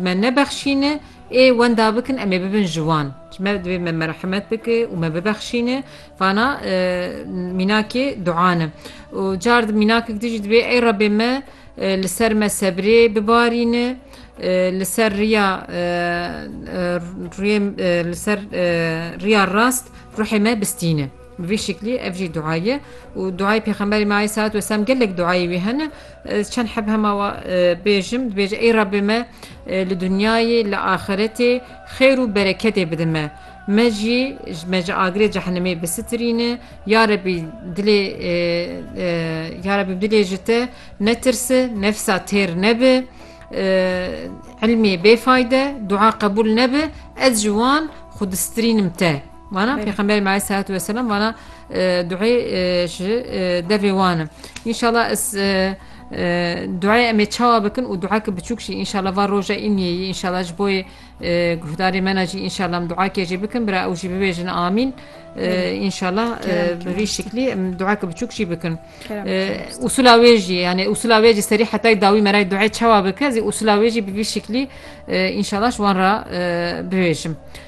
Me nebexşîne, ê wenda bikin em ê bibin ji wan. Ji me divê me merhemet bike û me bibexşîne. Vana mînakê duan e. Û car di mînakek di jî divê ey Rebê me li ser me sebrê bibarîne, li ser riya rûyê li ser riya rast ruhê me bistîne. Bi vî şiklî ev jî dua ye û duayê Pêxemberê me aleyh selat weselam gelek duayê wî hene. Ez çend heb hema we bêjim, dibêje ey Rabbê me li dinyayê, li axiretê xêr û bereketê bide me. Me jî me ji agirê cehenemê bisitirîne. Ya Rabbî dilê Ya Rabbî bi dilê ji te netirsi, nefsa têr nebe, ilmê bêfayde, dua qebûl nebe, ez ji wan xwe distirînim te. Vana Pêxemberê me aleyh salatu vesselam vana duê ji devê wan in. Înşallah ez duê em ê çawa bikin û dueke biçûk jî înşallah va roja înniyê yî înşallah ji boyê guhdarê me ne jî înşallah em duakê jî bikin bira ew jî bibêjin amîn înşallah bi vî şiklî em dueke biçûk jî bikin. Usula wê jî yani usula wê jî serî hetay dawî merayê duê çawa bike zî usula wê jî bi vî şiklî înşallah ji wan re bibêjim.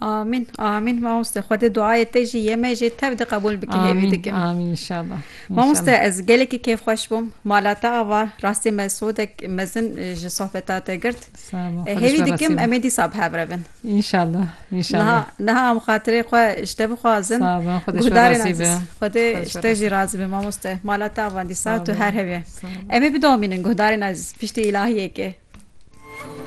Amîn amîn mamoste Xwedê duayê te jî yê me jê tev de qebûl bike hêvî dikim. Amîn amîn inşallah. Mamoste ez gelekî kêfxweş bûm. Mala te ava rastî me sodek mezin ji sohbeta te girt. Hêvî dikim em ê dîsa bi hev re bin. İnşallah inşallah. Niha em xatirê xwe ji te bixwazin. Guhdarên aziz. Xwedê ji te jî razî be mamoste. Mala te ava dîsa tu her hevye. Em ê bidomînin guhdarên aziz piştî îlahiyekê.